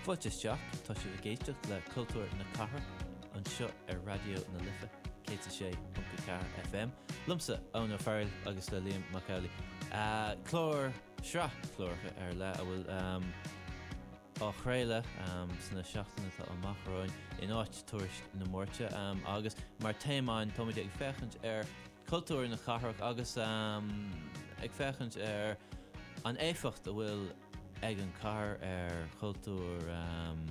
Fáilte isteach, tá sibh ag éisteacht le Cultúr na Cathrach anseo ar Raidió na Life 106.4 FM, liomsa, Eoin Ó Fearghail agus le Liam Mac Amhlaigh. Clár, sraith cláracha ar leith a bhfuil á chraoladh sna seachtainí atá amach romhainn in áit tuairisc na Máirte agus mar téama ann táimid ag féachaint ar cultúr na cathrach agus ag féachaint ar an éifeacht a bhfuil ag an cathair ar chultúr an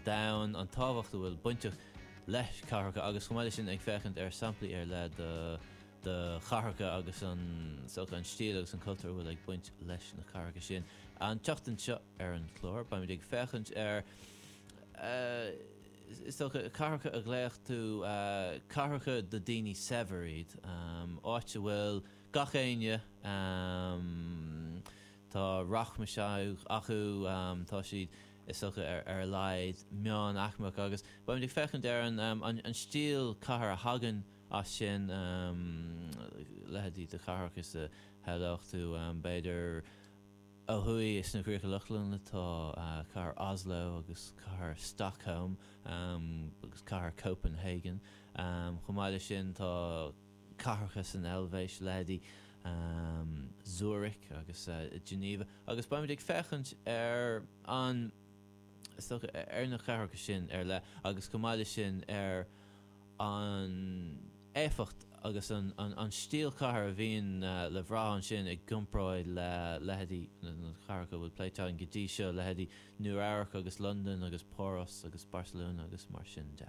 domhain, an tábhacht a bhfuil bainteach le cathracha agus chomh maith le sin ag féachaint ar samplaí ar leith de chathracha agus an stíl agus an cultúr a bhfuil ag baint leis na cathracha sin. An tseachtain seo ar an chlár, beimid ag féachaint ar. Is dócha, cathracha a ghlaoch tú, cathracha do daoine saibhir iad, áit a bhfuil gach éinne, tá rachmais acu, tá siad, is dócha, ar a laghad meán-aicmeach. Agus beimid ag féachaint ar an stíl cathair a thagann as sin, leithéidí de chathracha sa ghlaoch tú, b'fhéidir, Ó thuaidh sna Críocha Lochlannacha tá cathair Oslo agus cathair Stockholm agus cathair Copenhagen. Chomh maith leis sin tá cathracha san Eilvéis, leithéidí Zurich agus Geneva, agus beimid ag féachaint ar an, is dócha, ar na cathracha sin ar leith agus chomh maith leis sin ar an éifeacht agus an stíl chathair a bhíonn le bhraith ansin i gcomparáid le leithéidí na cathracha a bhfuil pléite againn go dtí seo, leithéidí Nua Eabhrac agus Londain agus Páras agus Barcelona agus mar sin de.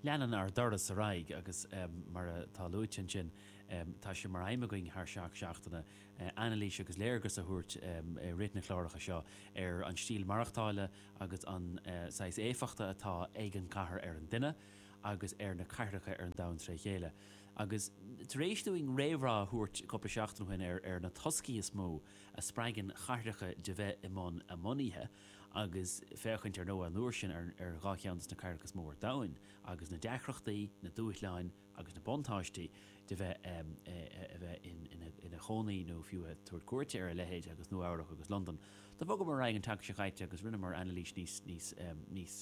Leanann ár dturas ar aghaidh agus mar atá luaite ansin tá sé mar aidhm againn thar seacht seachtaine anailís agus léargas a thabhairt i rith na cláracha seo ar an stíl maireachtála, agus an saghas éifeachta atá ag an gcathair ar an duine, agus ar na cathracha ar an domhan tré chéile. Agus tar éis dúinn réamhrá a thabhairt cúpla seachtain ó shin ar na toscaí is mó a spreagann cathracha de bheith i mbun a mbunaithe, agus féachaint ar ndóigh an uair sin ar dhá cheann de na cathracha is mó ar domhain, agus na deacrachtaí, na dúshláin, agus na buntáistí de bheith a bheith ina chónaí nó fiú ag tabhairt cuairte ar a leithéid agus Nua Eabhrac agus Londain. Do bhogamar ar aghaidh an tseachtain seo chaite agus rinneamar anailís níos, níos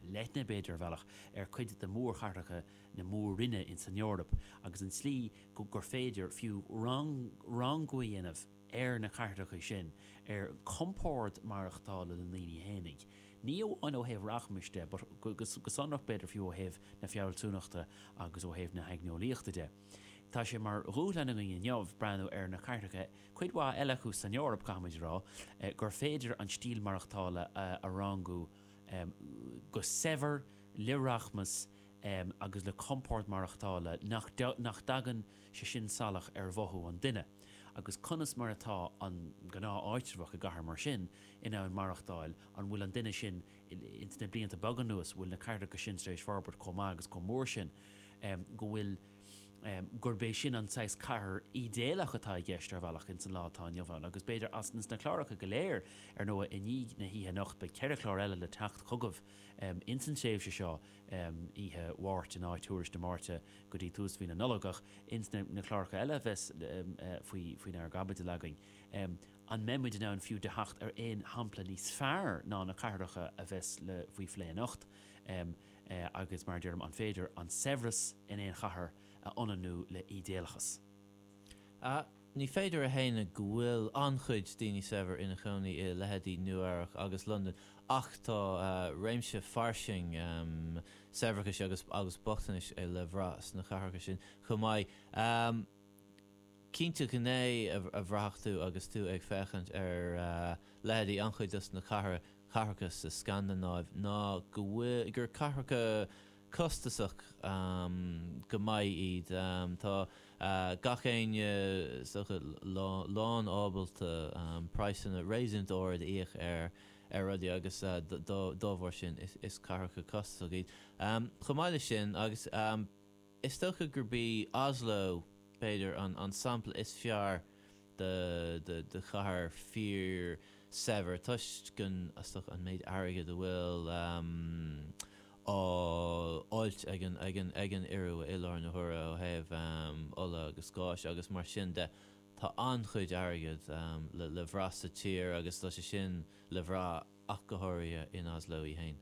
leithne, b'fhéidir, ar bhealach, ar cuid de mhórchathracha na Mór-Roinne insan Eoraip agus an tslí gur féidir fiú rangú a dhéanamh ar na cathracha sin, ar chompord maireachtála na ndaoine fhéinig, ní amháin ó thaobh rachmais de, but go sonrach, b'fhéidir, fiú ó thaobh na fealsúnachta agus ó thaobh na haigneolaíochta de. Tá sé mar dhúshlán againn inniu breathnú ar na cathracha, cuid mhaith eile acu san Eoraip, caithfimid a rá, gur féidir an stíl mhaireachtála a rangú go saibhir, le rachmas agus le compord maireachtála nach dtagann, sé sin salach ar mhothú an duine, agus conas mar atá an gnáth-áitreabhach i gcathair mar sin in ann maireachtáil, an bhfuil an duine sin, ins na blianta beaga anuas, an bhfuil na cathracha sin tar éis forbairt chomh maith agus chomh mór sin go bhfuil, gurb é sin an saghas cathair ídéalach atá i gceist, ar bhealach, ins an lá atá inniu ann. Agus b'fhéidir, as na cláracha go léir, ar ndóigh, i ndiaidh na hoíche anocht, beidh ceithre chlár eile le teacht chugaibh ins an tréimhse seo, oíche Mháirt in áit Thuairisc na Máirte go dtí tús mhí na Nollag. Ach ins na cláracha eile a bheas faoi chaibidil againn, an mbeimid in ann fiú teacht ar aon shampla níos fearr ná na cathracha a bheas faoi phlé anocht? Agus mar a deirim, an féidir an saibhreas in aon chathair a ionannú le ídéalachas? Ní féidir a shéanadh go bhfuil an-chuid daoine saibhir ina chónaí i leithéidí Nua-Eabhrac agus Londain ach tá réimse fairsing saibhreachais agus agus bochtanais le brath sna cathracha sin chomh maith. Cinnte, gné a bhraithfeadh tú agus tú ag féachaint ar leithéidí an-chuid dos na cathracha sa Scandanáiv ná go bhfuil gur cathracha costasach go maith iad. Tá gach éinne is dócha lánábalta praghsanna réasúnta ard a íoc ar rudaí agus dá bharr sin is cathracha costasacha iad. Chomh maith leis sin, agus is dócha gurb í Oslo b'fhéidir an sampla is fearr, de do chathair fíorshaibhir toisc go n-aisteach an méid airgid a bhfuil á fháilt ag an ag an ag an Iorua i láthair na huaire ó thaobh ola agus gáis agus mar sin de. Tá an-chuid airgid le le brath sa tír agus tá sé sin le brath. ach go háirithe in Oslo í féin.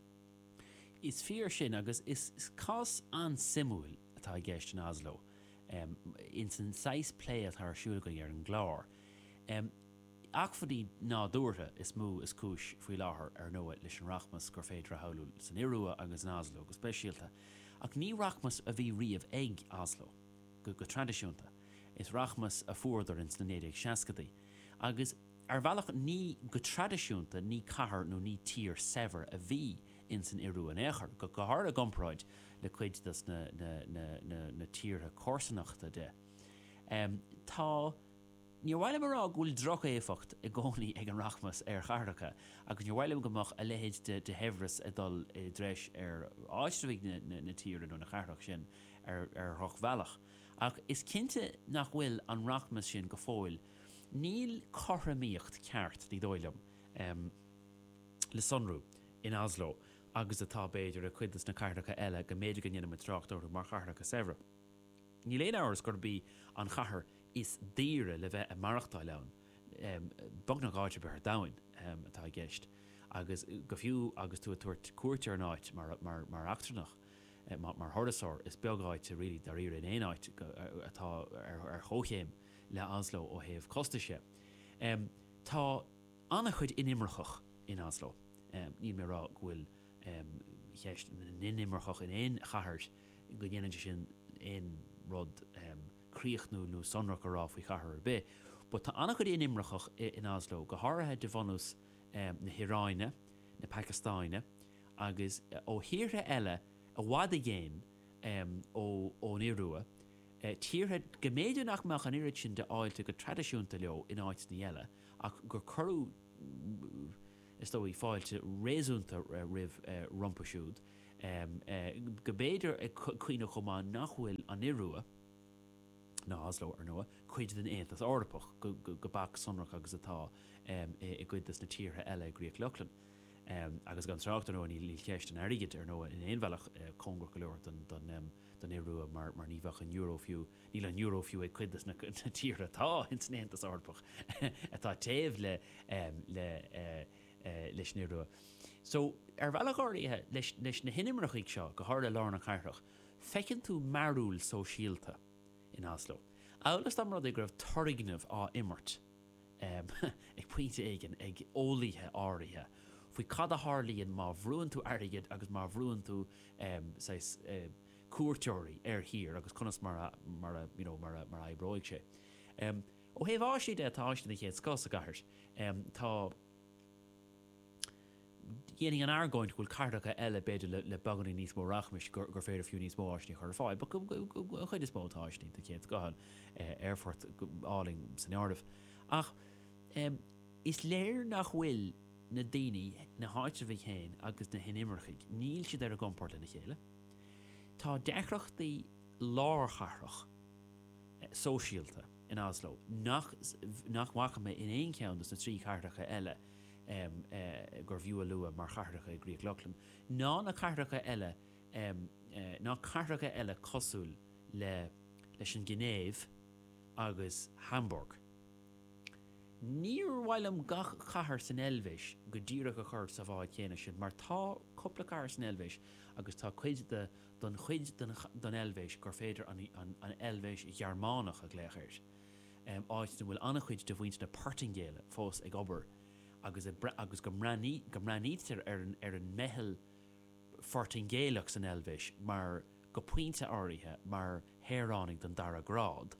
Is fíor sin, agus is cás an-suimiúil atá i gceist in Oslo, ins an saghas plé atá ar siúl againn ar an gclár. Acmhainní nádúrtha is mó is cúis faoi láthair, ar ndóigh, leis an rachmas gur féidir a shamhlú san Iorua agus in Oslo go speisialta. Ach ní rachmas a bhí riamh ag Oslo, go traidisiúnta. Is rachmas a fuaireadar ins na 1960idí, agus. Ar bhealach ní go traidisiúnta ní cathair nó ní tír saibhir a bhí ins an Ioruaidh in aon chor, go háirithe i gcomparáid le cuid dos na tíortha comharsanachta di. Tá, níor mhaith liom a rá go bhfuil droch-éifeacht i gcónaí ag an rachmas ar chathracha agus níor mhaith liom go mbeadh a leithéid de shaibhreas ag dul i dtreis ar áitreabhaigh na tíre nó na cathrach sin ar dhroch-bhealach. Ach is cinnte nach bhfuil an rachmas sin go fóill Níl cothromaíocht ceart, ní dóigh liom, le sonrú in Oslo agus atá, b'fhéidir, i gcuid de na cathracha eile go mb'fhéidir go ndéanaimid trácht orthu mar chathracha saibhre. Níl aon amhras gurb í an chathair is daoire le bheith ag maireachtáil ann, beagnach áit ar bith ar domhain, atá i gceist, agus go fiú agus tú ag tabhairt cuairt ar an áit mar eachtrannach, mar thurasóir, is beag áit really dáiríre in aon áit atá ar chomhchéim le Oslo ó thaobh costais de. Tá an-chuid inimirceach in Oslo. Níl mé ag rá go bhfuil ceist na n-inimirceach in aon chathair, go ndéanann sé sin aon rud críochnúil nó sonrach a rá faoi chathair ar bith, but tá an-chuid inimirceach in Oslo, go háirithe de bhunús na hIaráine, na Pacastáine agus ó thíortha eile i bhfad i gcéin ón Iorua. tíortha go mb'fhéidir nach mbeadh an oiread sin de fháilte go traidisiúnta leo in áiteanna eile ach gur cuireadh, is dóigh, fáilte réasúnta roimh rompu siúd, go mb'fhéidir ag cuimhneamh chomh maith nach bhfuil an Iorua, ná Oslo, ar ndóigh, cuid den Aontas Eorpach, go bac sonrach agus atá i gcuid de na tíortha eile i gCríoch Lochlann. Agus gan trácht, ar ndóigh, níl ceist an airgid, ar ndóigh, in aon bhealach cóngarach go leor don don Iorua mar ní bheadh an euro fiú, níl an euro fiú ag cuid dos na tíortha atá ins an Aontas Eorpach atá taobh le leis an Iorua. So, ar bhealach áirithe, leis na hinimircigh seo, go háirithe i lár na cathrach, feiceann tú mearbhall sóisialta in Oslo, amhail is dá mba rud é go raibh turgnamh á imirt ag pointe éigin, ag eolaíthe áirithe, faoi cad a tharlaíonn má bhrúann tú airgead agus má bhrúann tú, saghas, cuairteoirí ar thír agus conas mar a, mar a, you know, mar a, mar a oibreoidh sé. Ó thaobh áiseanna de, tá áiseanna den chéad scoth sa gcathair. Tá. Dhéanfainn an argóint go bhfuil cathracha eile, b'fhéidir le beagáinín níos mó rachmais, gur féidir fiú níos mó áiseanna a chur ar fáil. But an chuid is mó tá áiseanna den chéad scoth ann, aerfort álainn san áireamh. Ach is léir nach bhfuil na daoine, na háitribhaigh féin agus na hinimircigh, níl siad ar a gcompord lena chéile. Tá deacrachtaí lárchathrach, sóisialta in Oslo nach bhfaca mé in aon cheann de na trí chathracha eile. gurbh fhiú a lua mar chathracha i gCríoch Lochlann ná na cathracha eile ná cathracha eile cosúil le leis an Ghinéiv agus Hamburg. Níor mhaith liom gach cathair san Eilvéis go díreach a chur sa bhád chéanna sin mar tá cúpla cathair san Eilvéis agus tá cuid den chuid den Eilvéis gur féidir an Eilvéis Ghearmánach a ghlaoch air. áit ina bhfuil an-chuid de mhuintir na Portaingéile fós ag obair agus go mbreathnaítear ar an meitheal Phortaingéileach san Eilvéis mar, go pointe áirithe, mar shaoránaigh den dara grád.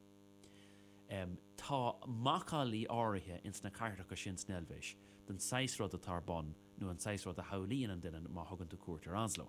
Tá macallaí áirithe ins na cathracha sin san Eilvéis den saghas rud atá ar bun nó an saghas rud a shamhlaíonn an duine má thugann tú cuairt ar Oslo.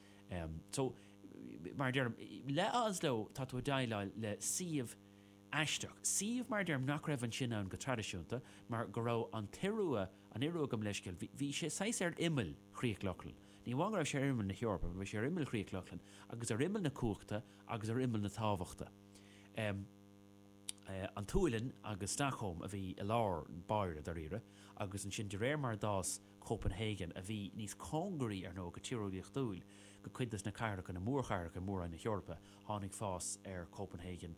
So, mar a deirim, le hOslo, tá tú ag déileáil le suíomh aisteach, suíomh, mar a deirim, nach raibh ansin ann go traidisiúnta mar go raibh an tIorua, an Iorua, gabh mo leithscéal, bhí sé saghas ar imeall Chríoch Lochlann. Ní amháin go raibh sé ar imeall na hEorpa, bhí sé ar imeall Chríoch Lochlann agus ar imeall na cumhachta agus ar imeall na tábhachta. An tSualainn agus Stockholm a bhí i lár báire, dáiríre, agus ansin de réir mar a d'fhás, Copenhagen, a bhí níos cóngaraí, ar ndóigh, go tíreolaíochtúil, go cuid de na cathracha, na mórchathracha i Mór-roinn na hEorpa. Tháinig fás ar Copenhagen,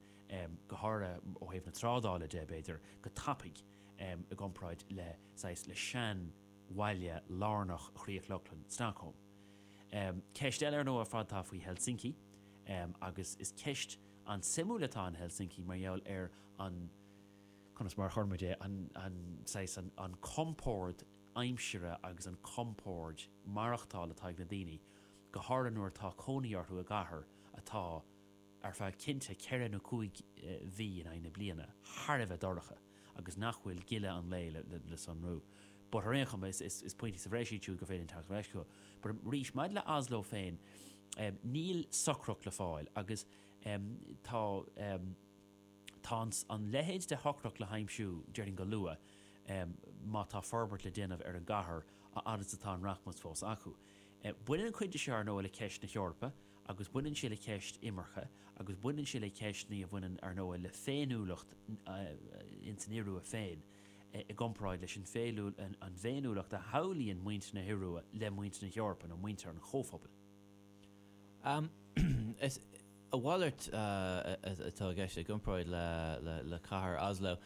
go háirithe ó thaobh na trádála de, b'fhéidir, go tapaidh i gcomparáid le, saghas, le seanbhaile lárnach Chríoch Lochlann, Stockholm. Ceist eile, ar ndóigh, ar fad atá faoi Helsinki, agus is ceist an-suimiúil atá in Helsinki mar gheall ar an, conas mar a chuirfinn é, an saghas, an compord aimsire agus an compord maireachtála atá ag na daoine, go háirithe nuair atá cónaí orthu i gcathair atá, ar feadh cinnte ceithre nó cúig mhí in aghaidh na bliana, thar a bheith dorcha agus nach bhfuil gile an lae le sonrú. But, ar aon chuma, is pointí sa bhreis iad siúd gur féidir linn teacht ar ais chucu. But, arís, maidir le Oslo féin, níl socracht le fáil agus tá, Tá an leithéid de shocracht le haimsiú, déarfainn, go luath má tá forbairt le déanamh ar an gcathair, a fhad is atá an rachmas fós acu. Baineann cuid de seo, ar ndóigh, le ceist na hEorpa, agus baineann sé le ceist imirce, agus baineann sé le ceisteanna a bhaineann, ar ndóigh, le féiniúlacht ins an Iorua féin i gcomparáid leis an bhféiniúlacht a shamhlaíonn muintir na hIorua le muintir na hEorpa, nó muintir an Chomhphobail. Is a mhalairt atá i gceist, i gcomparáid le cathair Oslo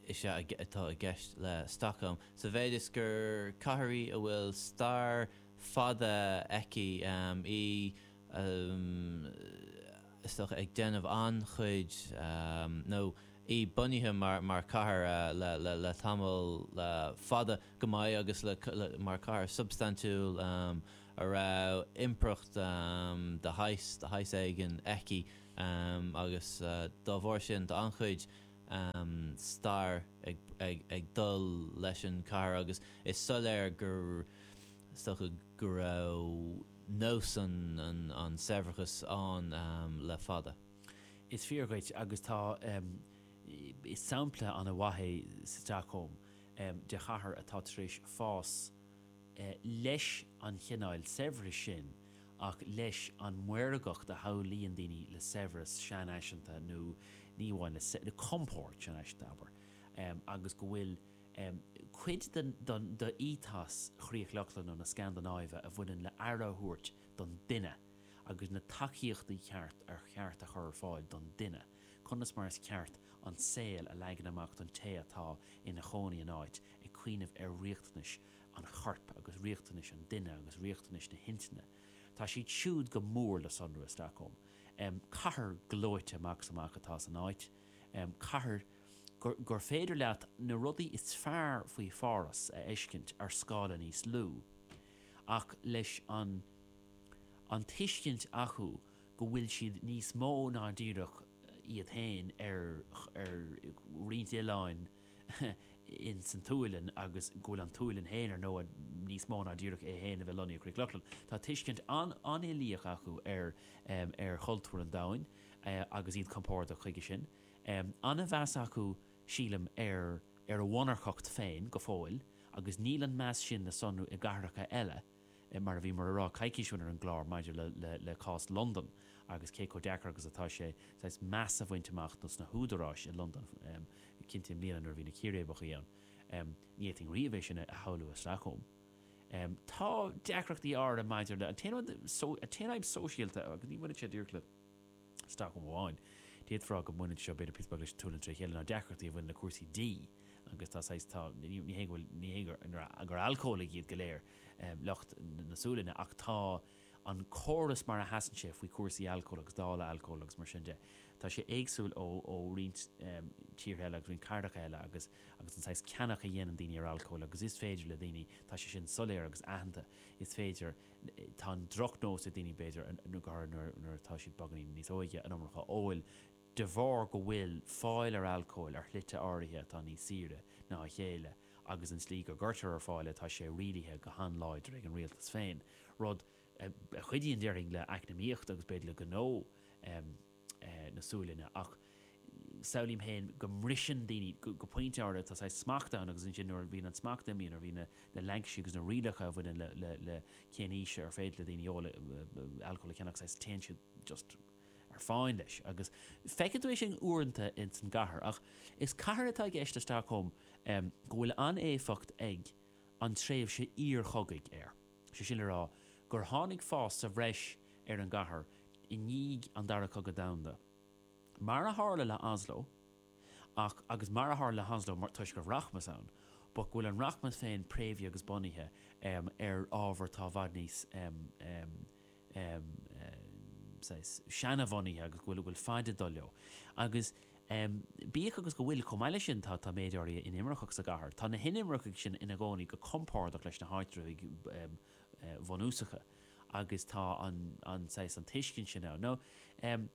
is ea atá i gceist le Stockholm, sa mhéid is gur cathair í a bhfuil stair fada aici, í, is dócha, ag déanamh an-chuid, nó í bunaithe mar chathair le tamall fada. go maith agus le, mar chathair shubstaintiúil a raibh impireacht de shaghas, de shaghas éigin aici agus dá bharr sin tá an-chuid stair ag, ag, ag dul leis an chathair agus is soiléir gur, is dócha go raibh nós an, an, an tsaibhreachais ann le fada. Is fíor dhuit, agus tá, is sampla ana mhaith í Stockholm. um, de chathair atá tar éis fás leis an chineáil saibhris sin ach leis an maorgacht a shamhlaíonn daoine le saibhreas seanfhaiseanta nó ní amháin le le compord seanfhaiseanta, abair, um, agus go bhfuil, um, cuid den, den, d'ethos Chríoch Lochlann nó na Scandanáive a bhaineann le aire a thabhairt don duine agus na tacaíochtaí ceart ar cheart a chur ar fáil don duine. conas mar is ceart an saol a leagan amach don té atá ina chónaí in áit, ag cuimhneamh ar riachtanais an choirp agus riachtanais an duine agus riachtanais na hintinne. Tá siad siúd go mór le sonrú i Stockholm. Cathair gleoite amach is amach atá san áit, cathair gur féidir leat na rudaí is fearr faoi Pháras a fheiscint ar scála níos lú, ach leis an tuiscint acu, go bhfuil siad níos mó ná díreach iad féin ar roinnt oileáin ins an tSualainn agus go bhfuil an tSualainn féin ar ndóigh níos mó ná díreach é féin a bheith lonnaithe i gCríoch Lochlann. Tá tuiscint an-uilíoch acu ar chultúr an domhain agus iad compordach chuige sin. An-mheas acu, sílim, ar a mhonarcacht féin go fóill agus níl an meas sin le sonrú i gcathracha eile. mar a bhíomar ag rá, coicís ó shin ar an gclár maidir le cás Londan agus cé chomh deacair agus atá sé saghas meas a bhaint amach do sna húdaráis i Londain cinnte i mbliana nuair a bhí na círéibeacha ann. Ní fhéadfainn riamh é sin a shamhlú i Stockholm. Tá deacrachtaí áirithe maidir le an t-aon fhadhb sóisialta agus ní bhaineann sé díreach le. Stockholm amháin. D'fhéadfá go mbaineann seo, b'fhéidir, píos beag leis an tSualainn tré chéile ná deacrachtaí a bhaineann le cúrsaí dí agus tá saghas, tá, ní hé go bhfuil, ní hé gur, gur alcólaigh iad go léir lucht na Sualainne ach tá an córas mar a sheasann sé faoi chúrsaí alcóil agus dáileadh alcóil agus mar sin de, tá sé éagsúil ó, ó roinnt tíortha eile agus roinnt cathracha eile agus, agus an saghas ceannach a dhéanann daoine ar alcól agus is féidir le daoine, tá sé sin soiléir agus aitheanta, is féidir. Tá an drochnós ag daoine, b'fhéidir, go háirithe nuair atá siad beagáinín níos óige, an iomarca a ól, de bharr go bhfuil fáil ar alcól ar shlite áirithe atá níos saoire ná a chéile agus an tslí go gcuirtear ar fáil é tá sé rialaithe go han-láidir ag an rialtas féin, rud a chuidíonn, déarfainn, le eacnamaíocht agus b'fhéidir le gnó. na Sualainne, ach samhlaím féin go mbriseann daoine, go pointe áirithe tá saghas smacht ann agus ansin nuair a bhíonn an smacht imithe, nuair a bhíonn na laincisí agus na rialacha a bhaineann le cén aois ar féidir le daoine óga alcól a cheannach, saghas téann siad just ar fán leis agus feiceann tú é sin uaireanta ins an gcathair ach is cathair atá i gceist i Stockholm go bhfuil an-éifeacht ag an tréimhse iar-chogaidh air. Sé sin le rá gur tháinig fás as breis ar an gcathair i ndiaidh an Dara Cogadh Domhanda. Mar a tharla le Oslo, ach agus mar a tharla le Oslo toisc go raibh rachmas ann, but go bhfuil an rachmas féin préamhaithe agus bunaithe ar ábhair atá i bhfad níos em, saghas, seana-bhunaithe agus go bhfuil, bhfuil faid ag dul leo. Agus, em, bíodh agus go bhfuil, chomh maith leis sin, tá, tá méid áirithe inimirceach sa gcathair, tá na hinimircigh sin ina gcónaí go compordach leis na háitritheoirí, em, eh, bhunúsacha agus tá an, an, saghas, an tuiscint sin ann. Now, em,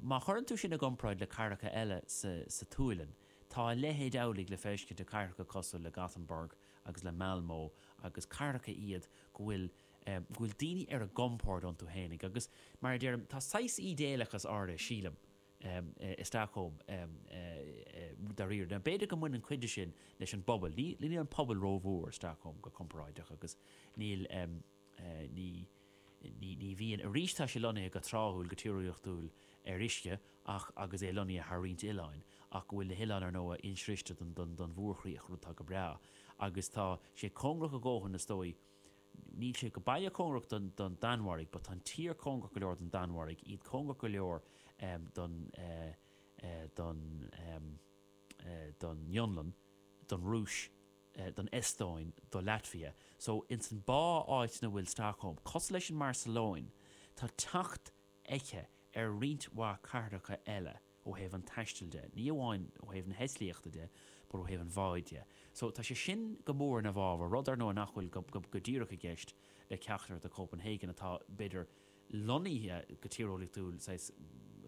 má chuireann tú sin i gcomparáid le cathracha eile sa, sa tSualainn, tá a leithéid amhlaidh le feiscint i gcathracha cosúil le Gothenburg agus le Malmö agus cathracha iad go bhfuil, go bhfuil daoine ar a gcompord iontu fhéinig, agus mar a deirim, tá saghas ídéalachas áirithe, sílim, i Stockholm dáiríre. Now, b'fhéidir go mbaineann cuid de sin leis an bpobal. Níl an pobal ró-mhór i Stockholm, go comparáideach, agus níl, ní, ní bhíonn, arís, tá sé lonnaithe go tráthúil, go tíreolaíochtúil, ar uisce, ach, agus é lonnaithe thar roinnt oileáin, ach go bhfuil na hoileáin, ar ndóigh, insroichte don, don, don mhórchríoch, rud atá go breá. Agus tá sé cóngarach a dhóthain, is dóigh, Níl sé go baileach cóngarach don don Danmhairg but tá an tír cóngarach go leor don Danmhairg, iad cóngarach go leor ehm don eh eh don ehm eh don Fhionlainn, don Rúis, eh don Eastóin, do Laitvia. So ins an bá áit ina bhfuil Stockholm. Cosúil leis an mBarcelona, tá teacht aici ar roinnt mhaith cathracha eile. ó thaobh an taistil de, ní amháin ó thaobh na heitlíochta de, but ó thaobh an bháid de. So, tá sé sin go mór ina bhfabhar, rud, ar ndóigh, nach bhfuil go, go, go díreach i gceist le ceachtar de Copenhagen, atá, b'fhéidir, lonnaithe go tíreolaíochtúil, saghas,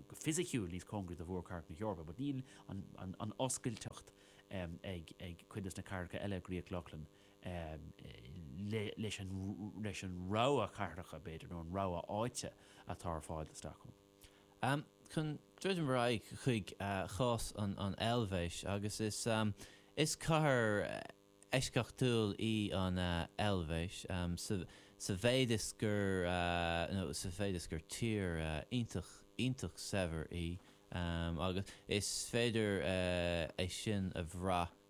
go fisiciúil níos cóngaraí do mhórchathracha na hEorpa, but níl an, an, an oscailteacht ag, ag cuid de na cathracha eile i gCríoch Lochlann le, leis an, leis an rogha cathracha, b'fhéidir, nó an rogha áite atá ar fáil do Stockholm. Chun druidim ar aghaidh chuig chás an Eilvéis, agus is cathair eisceachtúil í an Eilvéis sa mhéid is gur, nó sa mhéid is gur tír iontach, iontach saibhir í, agus is féidir é sin a bhrath,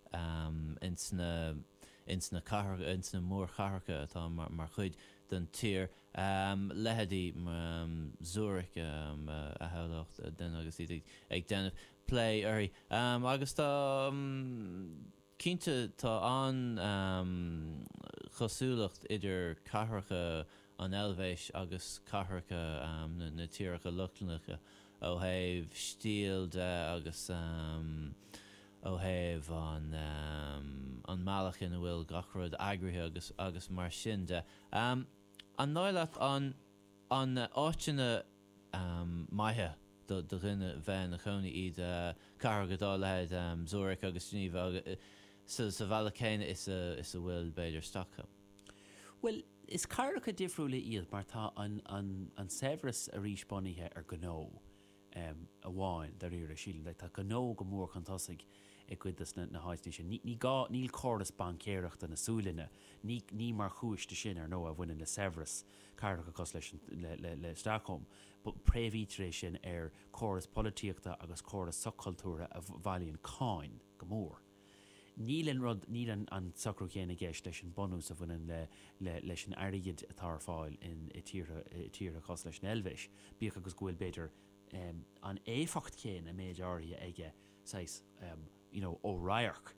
ins na cathracha, ins na mórchathracha atá mar chuid den tír, leitheidí Zurich a shamhlódh duine agus iad ag déanamh plé uirthi. Agus tá, cinnte, tá an-chosúlacht idir cathracha an Eilvéis agus cathracha na tíreacha Lochlannacha ó thaobh stíl de agus, ó thaobh an an mbealach ina bhfuil gach rud eagraithe agus agus mar sin de. An dóigh leat an an áiteanna maithe do do dhuine bheith ina chónaí iontu cathracha dá leithéid Zurich agus Geneva sa bhealach céanna is a is a bhfuil b'fhéidir Stockholm? Bhuel, is cathracha difriúla iad mar tá an an an saibhreas arís bunaithe ar gnó. amháin, dáiríre, sílim. Like, tá gnó go mór chun tosaigh i gcuid de na, na háiteanna sin. Ní, ní gá, níl córas baincéireachta na Sualainne, ní, ní mar chúis de sin, ar ndóigh, a bhaineann le saibhreas cathracha cosúil leis an, le, le, le Stockholm, but préamhaítear é sin ar córas polaitíochta agus córas soch-chultúrtha a bhailíonn cáin go mór. Níl an rud, níl an socrú céanna i gceist leis an bunús a bhaineann le, leis an airgead atá ar fáil in, i tíortha, i tíortha cosúil leis an Eilvéis, bíodh agus go bhfuil, b'fhéidir, an éifeacht chéanna, méid áirithe aige, saghas, you know, ó radharc.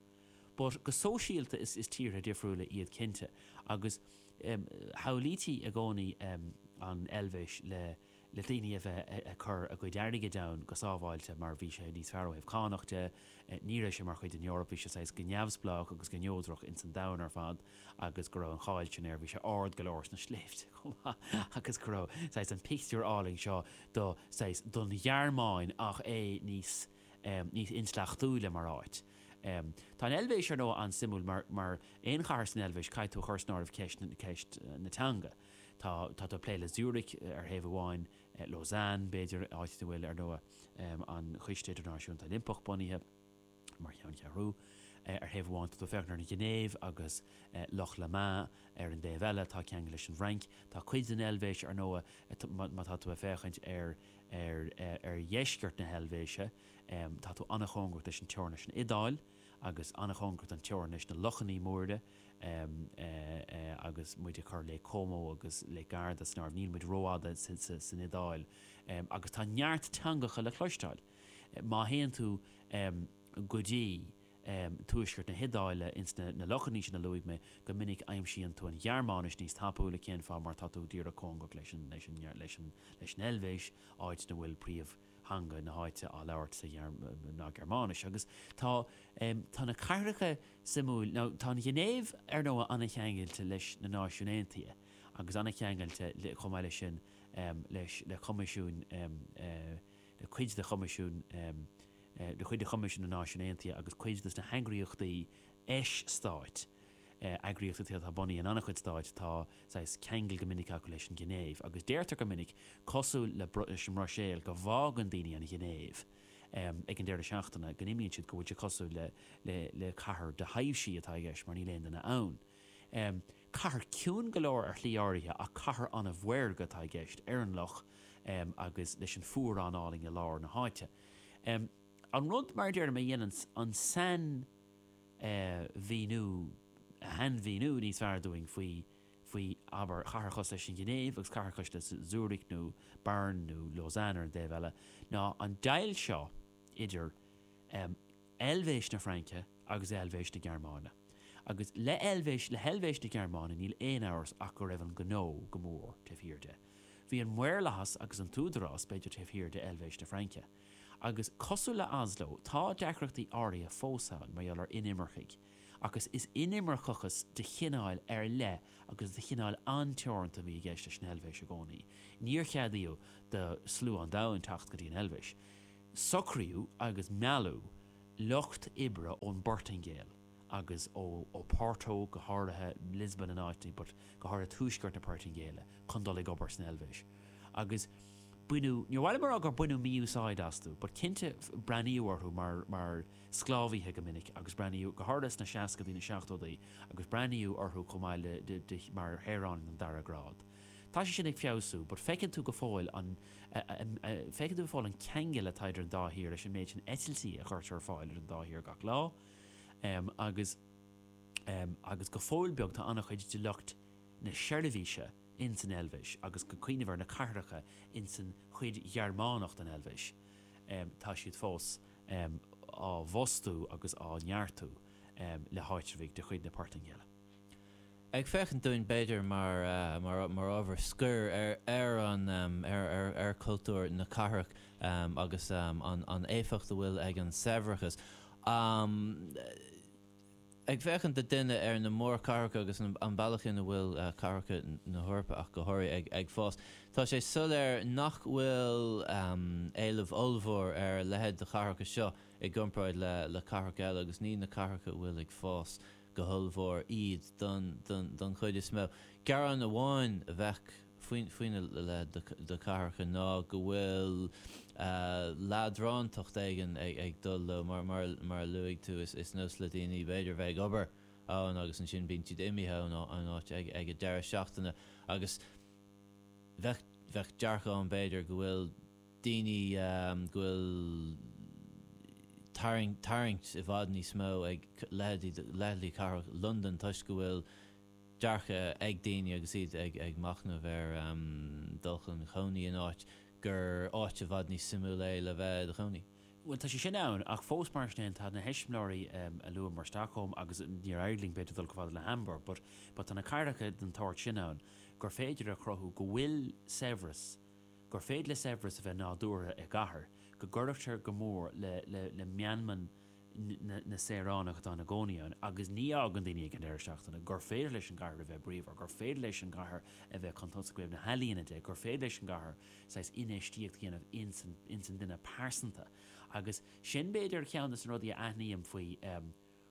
But go sóisialta is, is tíortha difriúla iad cinnte agus shamhlaítí i gcónaí an Eilvéis le, le daoine a bheith ag cur a gcuid airgid ann go sábháilte mar bhí sé níos fearr ó thaobh cánach de, ní raibh sé mar chuid den Eoraip, bhí sé saghas go neamhspleách agus go neodrach ins an domhan ar fad agus go raibh an cháil sin air, bhí sé ard go leor sna sléibhte chomh maith agus go raibh saghas an pictiúr álainn seo do saghas don Ghearmáin ach é níos, níos intleachtúla mar áit. Tá an Eilvéis ar ndóigh an-suimiúil mar, mar aon chathair san Eilvéis caithfidh tú a chur san áireamh ceist, ceist na teanga. Tá tú ag plé le Zurich, ar thaobh amháin, Lausanne, b'fhéidir, áit ina bhfuil, ar ndóigh, an Coiste Idirnáisiúnta Oilimpeach bunaithe mar cheanncheathrú. Ar thaobh amháin, tá tú ag féachaint ar an Ghinéiv agus Loch Léman, ar an dtaobh eile, tá ceangal leis an bhFrainc. Tá cuid den Eilvéis, ar ndóigh, má tá tú ag féachaint ar dheisceart na hEilvéise, tá tú an-chóngarach leis an teorainn leis an Iodáil. Agus an-chóngar don teorainn leis na Lochanna Móire agus muid ag cur Lake Como agus Lake Garda san áireamh, níl muid rófhada san Iodáil agus tá neart teangacha le cloisteáil. Má théann tú go dtí tuaisceart na hIodáile ins na lochanna sin a luaigh mé, go minic aimsíonn tú an Ghearmáinis níos tapúla, cén fáth? Mar tá tú díreach cóngarach leis an Eilvéis, áit ina bhfuil príomh theanga na háite á labhairt sa ná Gearmáinis. Agus tá, tá na cathracha suimiúil, ó tá an Ghinéiv, ar ndóigh, an-cheangailte leis na Náisiúin Aontaithe agus an-cheangailte chomh maith leis sin leis, le coimisiúin, le cuid de choimisiúin, le cuid de choimisiúin na Náisiún Aontaithe agus cuid des na heagraíochtaí eis-stáit, eagraíochtaí atá bunaithe in an-chuid stáit, tá saghas ceangail go minic acu leis an Ghinéiv, agus deirtear go minic, cosúil le leis an mBruiséil, go bhfágann daoine an Ghinéiv ag an deireadh seachtaine, go n-imíonn siad, go bhfuil sé cosúil le le cathair de thaibhsí atá i gceist mar níl aon duine ann. Cathair ciúin go leor ar shlí áirithe ach cathair an-mhaorga atá i gceist, ar an loch agus leis an fuarán álainn i lár na háite. An rud, mar a deirim, a dhéanann an sain, mhíniú, a shainmhíniú níos fearr dúinn faoi, faoi, abair, cathair cosúil leis an nGinéiv agus cathair cosúil le Zürich nó Bern nó Lausanne ar an dtaobh eile, ná an deighilt seo idir Eilvéis na Fraince agus Eilvéis na Gearmáine. Agus le hEilvéis, le hEilvéis na Gearmáine, níl aon amhras ach go raibh an gnó go mór taobh thiar de. Bhí an maorlathas agus an t-údarás, b'fhéidir, taobh thiar de Eilvéis na Fraince. Agus cosúil le Oslo, tá deacrachtaí áirithe fós ann mar gheall ar inimircigh, ach is inimirceachas de chineál ar leith agus de chineál an-teoranta a bhí i gceist leis an Eilvéis i gcónaí. Níor ceadaíodh do slua an domhain teacht go dtí an Eilvéis. Socraíodh agus mealladh lucht oibre ón bPortaingéil. agus ó Oporto, go háirithe Lisbon in áiteanna, but go háirithe tuaisceart na Portaingéile, chun dul ag obair san Eilvéis. Agus baineadh, níor mhaith liom a rá gur baineadh mí-úsáid astu, but cinnte breathnaíodh orthu mar, mar sclábhaithe go minic agus breathnaíodh, go háirithe sna seascadaí, na seachtódaí, agus breathnaíodh orthu chomh maith le, de, de, mar shaoráin den dara grád. Tá sé sin ag feabhsú, but feiceann tú go fóill an, feiceann tú go fóill an ceangal atá idir an dá thír leis an méid sin eitiltí a chuirtear ar fáil idir an dá thír gach lá, Um agus um agus go fóill beag tá an-chuid de lucht na seirbhíse ins an Eilbhéis agus go cuimhin ar na cathracha ins an chuid Ghearmánach den Eilbhéis um tá siad fós um á bhfostú agus á neartú um le háitreabhaigh de chuid na Portaingéile. Ag féachaint dúinn b'fhéidir mar ábhar scoir ar chultúr na cathrach agus an éifeacht a bhfuil ag an saibhreas, ag féachaint do dhuine ar na mórchathracha agus an bealach ina bhfuil cathracha na hEorpa ach go háirithe ag fás, tá sé soiléir nach bhfuil éileamh ollmhór ar a leithéid de chathracha seo i gcomparáid le cathracha eile agus ní na cathracha a bhfuil ag fás. go hollmhór iad don chuid is mó. Gearán amháin a bheadh faoina leithéid de chathracha ná go bhfuil leadrántacht éigin ag dul leo. Mar a luaigh tú, is nós le daoine b'fhéidir bheith ag obair ann agus ansin bíonn siad imithe ón áit ag an deireadh seachtaine agus bheadh dearcadh ann b'fhéidir go bhfuil daoine go bhfuil tarraingt i bhfad níos mó ag leithéidí cathrach Londan toisc go bhfuil dearcadh ag daoine agus iad ag machnamh ar dhul chun cónaí in áit, gur áit i bhfad níos suimiúla é le bheith i do chónaí. Bhuel, tá sé sin ann, ach fós, mar sin féin, tá na heiseamláirí a luadh mar Stockholm agus níor éirigh linn, b'fhéidir, dul chomh fada le Hamburg, but tá na cathracha den sórt sin ann gur féidir a chruthú go bhfuil saibhreas, gur féidir le saibhreas a bheith nádúrtha i gcathair, go gcuirfeadh sé go mór le meanma na saoránach atá ina gcónaí ann, agus ní fhágann daoine ag an deireadh seachtaine, gur féidir leis an gcathair a bheith bríomhar, gur féidir leis an gcathair a bheith chun tosaigh ó thaobh na healaíona de, gur féidir leis an gcathair saghas infheistíocht a dhéanamh ins an duine pearsanta. Agus sin b'fhéidir ceann des na rudaí a aithním faoi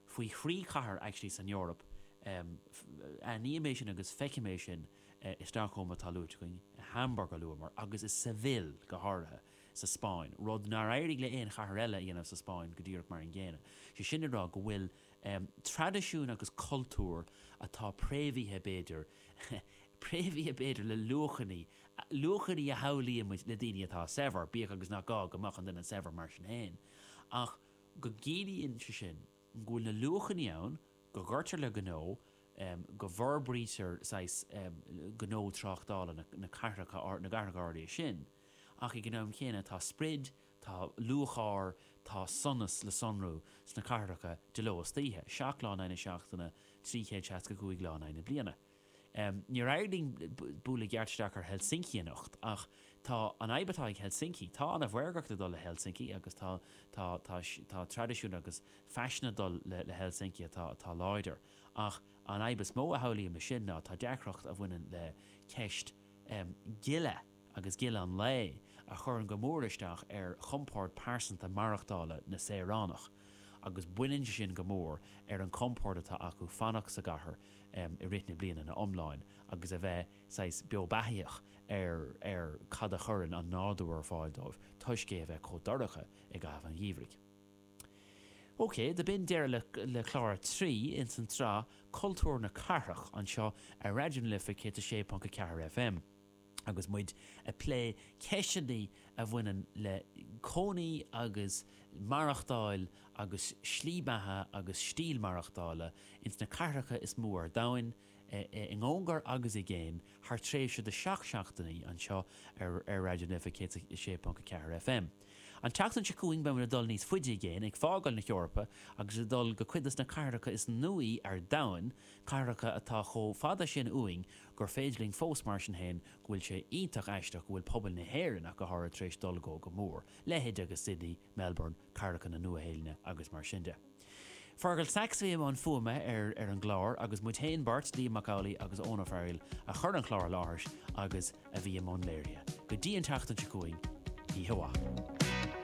faoi thrí chathair actually san Eoraip, aithním é sin agus feicim é sin i Stockholm atá luaite againn, i Hamburg a luamar, agus i Seville go háirithe sa Spáinn, rud nár éirigh le haon chathair eile a dhéanamh sa Spáinn go díreach mar an gcéanna. Sé sin le rá go bhfuil traidisiún agus cultúr atá préamhaithe b'fhéidir, préamhaithe b'fhéidir le luachanna, luachanna a shamhlaímid le daoine atá saibhir, bíodh agus nach gá go mbeadh an duine saibhir mar sin féin, ach. go gciallaíonn sé sin go bhfuil na luachanna ann go gcuirtear le gnó, go bhforbraítear saghas gnó tráchtála na gcathracha áirithe sin, ach ag an am chéanna tá sprid, tá lúcháir, tá sonas le sonrú sna cathracha de ló is d'oíche, seacht lá in aghaidh na seachtaine, trí chéad seasca cúig lá in aghaidh na bliana. Níor éirigh linn bualadh i gceart isteach ar Helsinki anocht, ach tá an fhadhb atá ag Helsinki, tá ana mhaorgacht ag dul le Helsinki agus tá tá tá tá traidisiún agus faisean ag dul le le Helsinki atá atá láidir. Ach an fhadhb is mó a shamhlaím le sin ná tá deacracht a bhaineann le ceist gile. agus gile an lae, a chuireann go mór isteach ar chompord pearsanta maireachtála na saoránach, agus baineann sé sin go mór ar an chompord atá acu fanacht sa gcathair i rith na bliana ina iomláin agus a bheith saghas beo beathaíoch ar cad a chuireann an nádúr ar fáil dóibh toisc é a bheith chomh dorcha i gcaitheamh an gheimhridh. OK, do b'in deireadh le clár a trí ins an tsraith Cultúr na Cathrach anseo ar Raidió na Life 106.4 FM. Agus muid ag plé ceisteanna a bhaineann le cónaí agus maireachtáil agus slí beatha agus stíl maireachtála ins na cathracha is mó ar domhain, i gcóngar agus i gcéin, thar tréimhse de sheacht seachtainí anseo ar Raidió na Life 106.4 FM. An tseachtain seo chugainn beimid ag dul níos faide i gcéin, ag fágáil na hEorpa agus ag dul go cuid dos na cathracha is nuaí ar domhain, cathracha atá chomh fada sin uainn gur féidir linn fós, mar sin féin, go bhfuil sé iontach aisteach go bhfuil pobail na hÉireann, ach go háirid, tar éis dul go, go mór, leithéid agus Sydney, Melbourne, cathracha na Nua-Shéailinne agus mar sin de. Fearghal Saxe a bhí i mbun fuaime ar, ar an gclár, agus muid féin beirt, Liam Mac Amhlaigh agus Eoin Ó Fearghaíl, a chuir an clár i láthair agus a bhí i mbun léirithe. Go dtí an tseachtain seo chugainn, oíche mhaith.